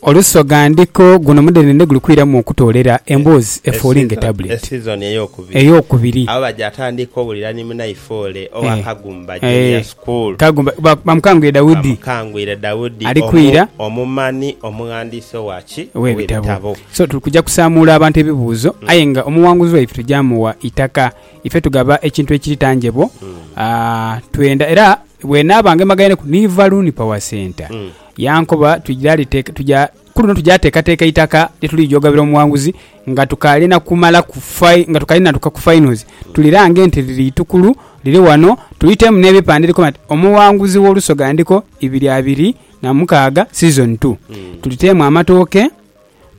Olusoga ndiko guno mudhenene guli kwiramu okutoolera emboozi efuulinge tabuleti. Esizoni ey'okubiri. Ey'okubiri. Abo baja atandika owulira ni munaifoole owa Kagumba Junior School. Kagumba, bamukangwire Daudi. Bamukangwire Daudi. Ali kwira. Omumanhi, omughandiisi owa ki? Ow'ebitabo. So tuli kuja kusaamuula abantu ebibuuzo aye nga omughanguzi waife tuja mugha itaka. Ife tugaba ekintu ekiri tangible, twenda era Bwe naaba ngemagaineku ni Valuuni Power Centre, yankoba ku luno tuja teekateeka itaka lye tuliija ogabira omughanguzi nga tukaali na kumala nga tukaali natuuka ku finals. Tuli lange nti liri itukulu liri wano tuiteemu n'ebipande ebikoba nti Omughanguzi w'Olusoga Ndiko ibiri abiri na mukaaga, Season Two. Tuliteemu amatooke.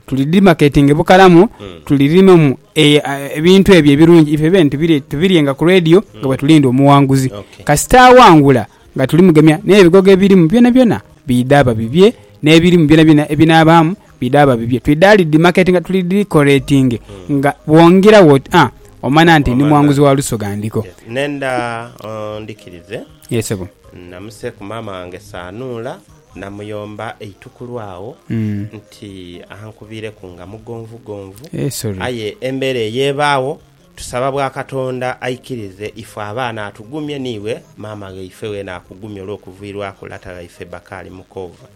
Tuli dhimaketinge bukalamu, tuli limemu ebintu ebyo ebirungi ife bene tubiryenga ku leediyo nga bwe tulinda omuwanguzi. Kasita awangula nga tulimugemya n'ebigogo ebirimu byonabyona bidha babibye, n'ebirimu byonabyona ebinaabaamu bidha babibye. Twidha dhidhimaketinga, tuli dhikoreetinge nga bwongera wo oti aa, omanya nti ndi muwanguzi wa Lusoga Ndiko. Nhenda ondhikirize. Namuseeku maama wange saanuula. Namuyomba eitukulu agho nti ankubireku nga mugonvugonvu. Aye embeera eyo ebaagho, tusaba bwa Katonda aikirize ifwe abaana atugumye n'iwe maama ghaife weena akugumye olw'okuviirwaku lata ghaife Bakali Mukoova.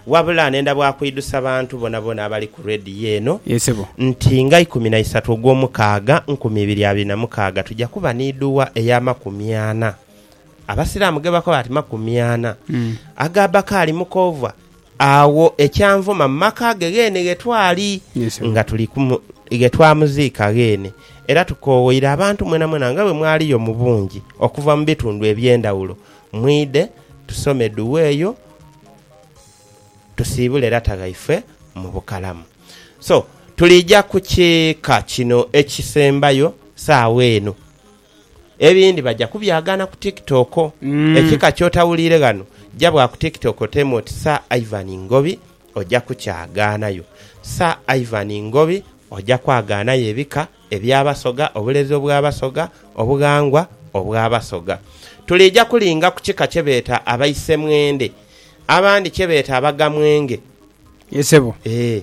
Wabula nenda bwa kuidhusa bantu bonabona abali ku Radio eno nti nga ikumi na isatu ogw'omukaaga nkumi ibiri abiri na mukaaga tuja kuba n'idhuwa ey'amakumi ana Abasiraamu ge bakoba ati makumi ana, aga Bakaali Mukoovwa, agho ekyanvuma mu maka ge ghene ghe twali nga tuli kumu, ghe twamuziika ghene. Era tukoowoire abantu mwenamwena nga bwe mwaliyo mu bungi okuva mu bitundu eby'endhawulo, mwidhe tusome duwa eyo tusiibule lata ghaife mu bukalamu. So, tuliija ku kika kino ekisembayo saagha eno. Ebindi baja kubyagaana ku TikTok. Ekika ky'otawuliire ghano, ja bwa ku TikTok oteemu oti Sir Ivan Ngobi oja kukyagaanayo. Sir Ivan Ngobi oja kwagaanayo ebika eby'Abasoga, obulezi obw'Abasoga, obughangwa obw'Abasoga. Tuliija kulinga ku kika kye beeta Abaisemwende, abandi kye beeta Abagamwenge. Ye sebo. Eeh.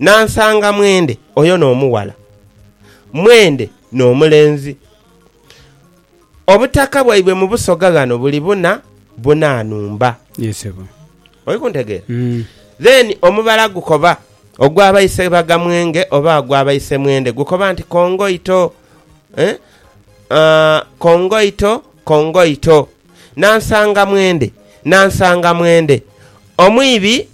Nansanga mwendhe oyo n'omughala, mwendhe n'omulenzi. Obutaka bwaibwe mu busoga ghano buli buna buna nhumba. Ye sebo. Oli kuntegeera? Then omubala gukoba ogwa Baisebagamwenge oba ogwa Baisemwendhe gukoba nti Kongoito eh, aah, Kongoito, Kongoito. Nansanga mwendhe, Nansanga mwendhe, omwibi.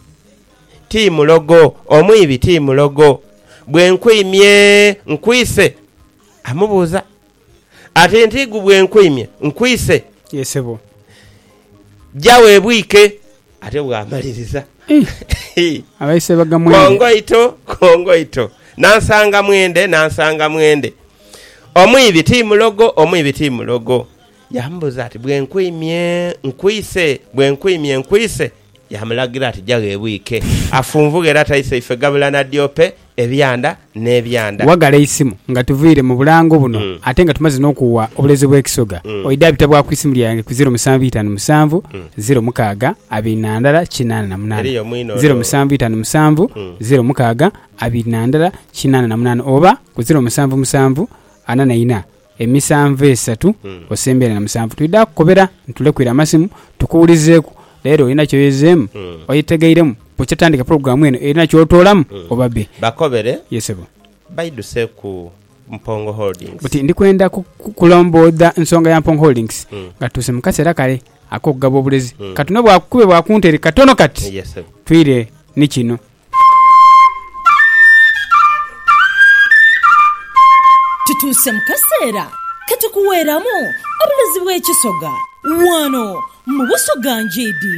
ti mulogo, omwibi ti mulogo. Bwe nkwimye, nkwise? amubuuza. Ate ntigu bwe nkwimye, nkwise? Ye sebo. Ja webwike. Ate bw'amaliriza. Abaise baga mwende. Kongoito, kongoito. Nansanga mwende, nansanga mwende. Omwibi ti mulogo, omwibi ti mulogo. Yamubuuza ati, Bwe nkwimye, nkwise? Bwe nkwimye, nkwise? Yaamulagira ati, Ja gheebwike, afunvughe era taise ife gabula na dyope, ebyanda n'ebyanda. Waghala eisimu nga tuviire mu bulango buno ate nga tumaze n'okuwa obuleezo bw'ekisoga, oidha bita bwa ku isimu lyange ku ziro musanvu itanu musanvu, ziro mukaaga, abiri na ndala, kinaana na munaana. Ziro musanvu itanu musanvu, ziro mukaaga, abiri na ndala, kinaana na munaana oba ku ziro musanvu musanvu, ana na ina, Emisanvu esatu osembere na musanvu twidha kukobera nitulekuire amasimu tukuwulizeeku leero olina kyoyezeemu, oyetegeiremu bukya tutandike pulogulaamu eno erina kyotoolamu oba bbe. Bakobere Ye ssebo. baidhuse ku Mpongo Holdings. Buti ndi kwenda kukulomboodha nsonga ya Mpongo Holdings nga tutuuse mu kaseera kale ak'okugaba obulezi. Katonobwakukube bwa ku ntere katono kati. Ye ssebo. Twire ni kino. Tutuuse mu kaseera ke tukuweeramu obulezi bw'ekisoga wano mu Busoga Ngyidi.